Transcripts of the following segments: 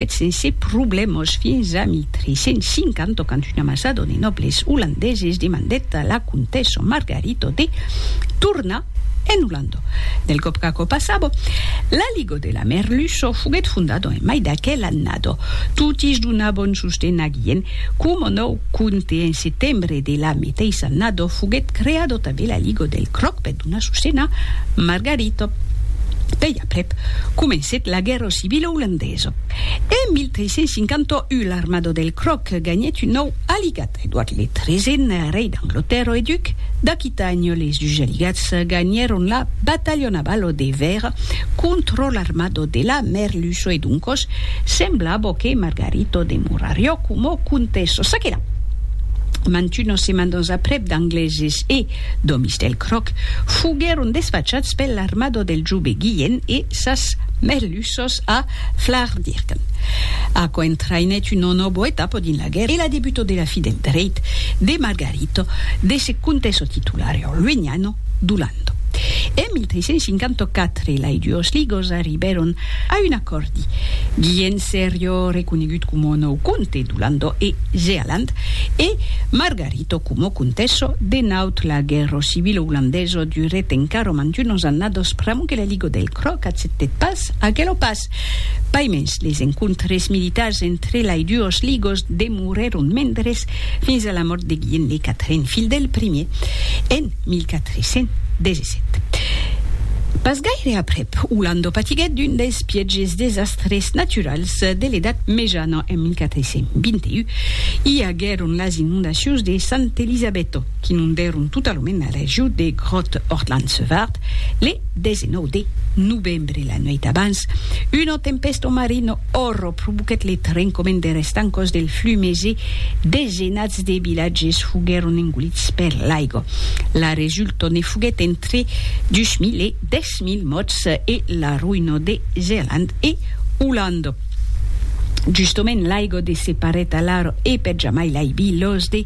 Eth sense problèmas fins a 1350, quand una massa de nòbles olandeses demandèt a la comtessa Margarita de tornar en Olanda. Del còp qu'aquò passava, la Liga de la Merluça foguèt fondada en mai d'aquela annada. Totis donavan sosten a Guilhèm coma nòu comte. En setembre de la meteissa annada foguèt creada tanben la Liga del Cròc per donar sosten a Margarita. Pèi aprèp comencèt la guèrra civila. civila olandesa. En 1351 l'armada del Croc ganhèt un nòu aligat, Edward le Tresèn, rei d'Anglatèrra e duc d'Aquitània. Les dus aligats ganhèron la batalha navala de Vèira contra l'armada de la Merluça e doncas semblava que Margarita demorariá coma comtessa. Ça que la, mantunas setmanas aprèp d'Angleses e d'òmis del Croc foguèron desfachats per l'armada del jove Guilhèn e, sas merlussos a Flaardirken. Aquò entraïnèt una nòbo etapa dins la guèrra e la debuta de la fi del dreit de Margarito de se contèsser titular au Luignano d'Olanda. En 1354, lai duos ligos arribèron a un acòrdi. Guillem serió reconegut coma nòu comte d'Olanda e Zealand e Margarito coma comtessa de Naut. La guèrra civila olandesa durèt encara mantunas annadas pr'amor que la. Rigo del Cròc acceptèt pas aquelo pas. Paimens, les encontres militars entre lai duos ligos demorèron mendres fins a la mòrt de Guilhem de Catrin, filh del primier, en 1417. Pas gaire aprèp, Olando patiguèt d'un dels pièges desastres naturals de l'Edat Mejana en 1421. I aguèron las inondacions de Sant'Elisabetto. qu'inondèron totalament la region de Grothorland-Sevart le 19 de novembre. La nuèit abans, una tempèsta marina òrro provoquèt le trencament de restancòs del flumes e desenats de vilatges foguèron engolits per l'aiga. La resulta ne foguèt entre 2.000 e 10.000 mòrts e la roïna de Zealand e Olanda. Justament l'aiga de se parèt alara e per jamai l'aibi los de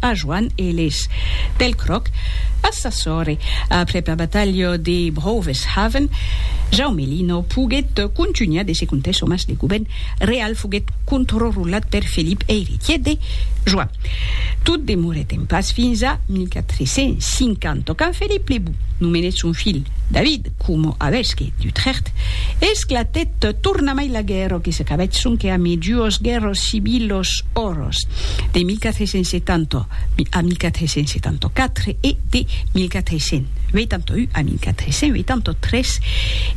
A Joan Eles. Pel cròc, a sa sòrre, aprèp la batalha de Brouweshaven, Jaume Lino poguèt contunhar de se contar çò mas de govèrn real foguèt controrulat per Felip eiretièr de Joan. Tot demorèt en pas fins a 1450 quand Felip le Bou nomenèt son filh David, coma avesqui d'Utrecht, esclatèt tornamai la guèrra que s'acabèt sonque amid duos guèrros civilos oros, de 1470 a 1474 e de 1481 a 1483,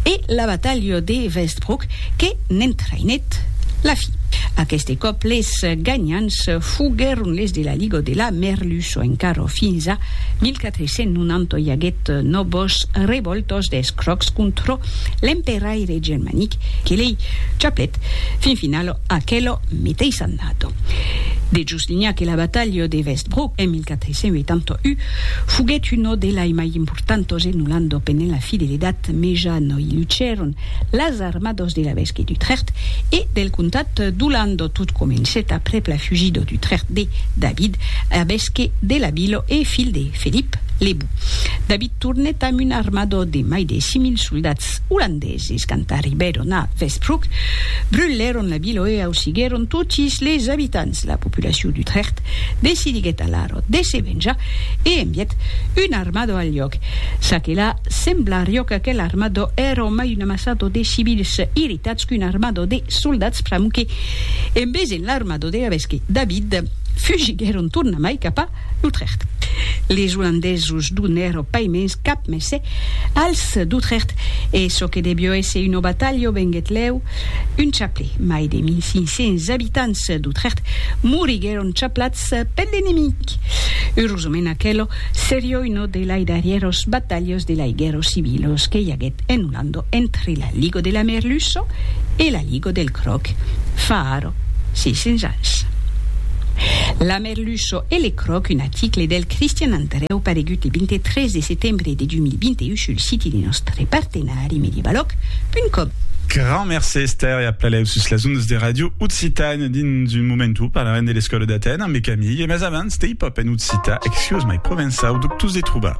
e la batalha de Westbroek que n'entraïnèt la fin. Aqueste còp les ganhants foguèron les de la Liga de la Merlu. çò encara fins a 1490 i aguèt nòvos revòltas d'escròcs contra l'emperaire germanic que lei chaplèt fin finala aquela meteissa annada de Justinian que la batalha de Westbrook en 1481 foguèt una de lai mai importantas en Olanda pendent la fideledat mejana i lucèron las armados de l'evesque d'Utrecht e del comtat d'Olando. Tot comencèt aprèp la fugida d'Utrecht de David, evesque de la vila e filh de Felip le Bou. David tornèt amb un armada de mai de 6.000 soldats olandeses. Quand arribèron a Westbroek, brulèron la vila e ausiguèron totis les abitants. La populacion d'Utrecht decidiguèt alara de se venjar e envièt una armada al lloc. Ça que la, sembla riòca que l'armada èra mai Un amassado de civils irritats qu'un armado de soldats pramuque en vesent l'armado de l'evesque David, fugiguèron tornamai cap a L'Utrecht. Les olandesos donèro pas mens cap messe als d'Utrecht e çò que devió èsser una batalha venguèt lèu un chaplè. Mai de 1500 abitants d'Utrecht moriguèron chaplats per l'enemic. Eurosament aquelo serió una de lai darrièros batalhas de lai guèrra civila que i aguèt. En un ando entre la ligo de la merluço e la ligo del croc, faro, 600 ans. La merluço e le croc, un aticle del Cristian Andrèu paregut le 23 de setembre de 2021 sul siti de nòstre partenari mediabalòc.com. Grand mercé Esther e a Plaléu sus las ondas de Radio Occitània. Dins un momentu parlarem de l'escòla d'Atèn ambe Camille, mas abans, Stay Pop en occitan, Excuse my provençau, dubtós de trobar.